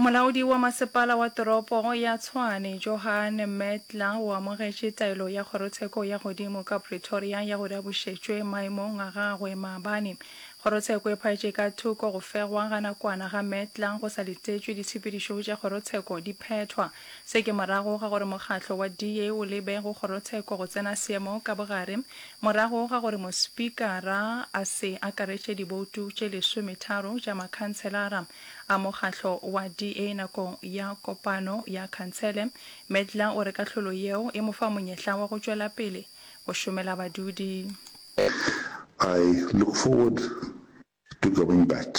Molaodi wa masepala wa toropo ya Tshwane, Johan Metler o amogetše taelo ya kgorotsheko ya godimo ka Pretoria ya gore a bušetšwe maemong a gagwe maabane. Kgorotsheko e phaetše ka thoko go fegwa ga nakwana ga Metler go sa letetšwe ditshepedišo tša kgorotsheko di phethwa. Se ke morago ga gore mokgatlo wa DA o lebe go kgorotsheko go tsena seemo ka bogare morago ga gore mospikara a se akaretše diboutu tše lesometharo tša makhanselara a mokgatlo wa DA nakong ya kopano ya khansele. Medler o re kahlolo yeo e mo fa monyetla wa go tšwela pele go šomela badudi. I look forward to going back.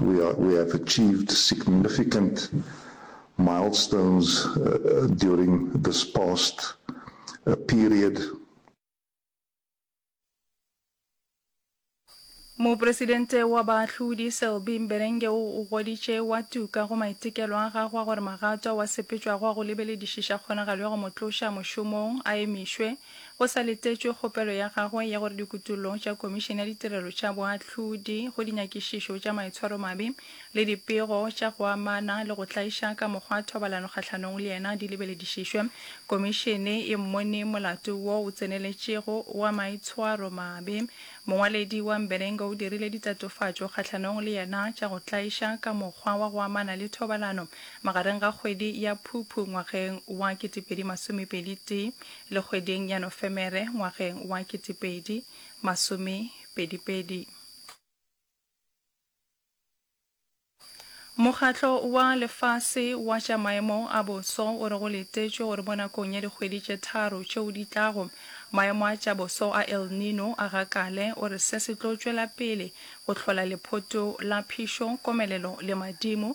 We have achieved significant milestones during this past period. Mopresidente wa Baahlodi Selby Mberenge o o goditše wa tuka go maitekelo a gagwe a gore magato ao a sepetšwago a go lebeledišiša kgonagalo ya go mo tloša mošomong a emišwe. Go sa letetšwe kgopelo ya gagwe ya gore dikutollo tša Komišene ya Ditirelo tša Boahlodi go dinyakišišo tša maitshwaromabe le dipego tša go amana le go tlaiša ka mokgwa thobalano kgahlanong le yena di lebeledišišwe, Komišene e mmone molato wo o tseneletšego wa maitshwaromabe. Mongwaledi wa Mberenge o dirile ditatofatšo kgahlanong le yena tša go tlaiša ka mokgwa wa go amana le thobalano magareng ga kgwedi ya Phuphu ngwageng wa 2021. le kgweding ya Nofemere ngwageng wa ketepedi masome pedipedi. Mokgatlo wa Lefase wa tša Maemo a Boso o re go letetšwe gore mo nakong ya dikgwedi tše tharo tšeo di tlago, maemo a tša boso a El Nino a gakale. O re se se tlo tšwela pele go hlola lephoto la phišo, komelelo le madimo.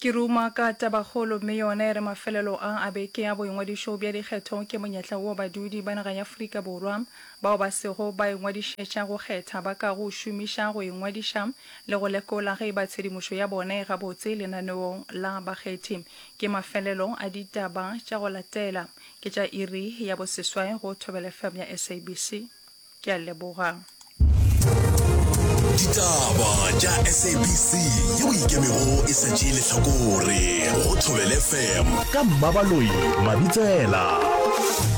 Ke ruma ka tabakgolo mme yona e re mafelelo a a beke a boingwadišo bja dikgetho ke monyetla wo badudi ba naga ya Afrika Borwa bao ba sego ba ingwadišetša go kgetha ba ka go šomiša go ingwadiša le go lekola ge e ba tshedimošo ya bona e gabotse lenaneong la bakgethi. Ke mafelelo a ditaba tša go latela ke tša iri ya boseswai go Thobelefm ya SABC. Ke a leboga. Ditaba tša SABC yeo e ikemego e sa tšee lehlakore go Thobele FM ka Mmabaloi Mabitsela.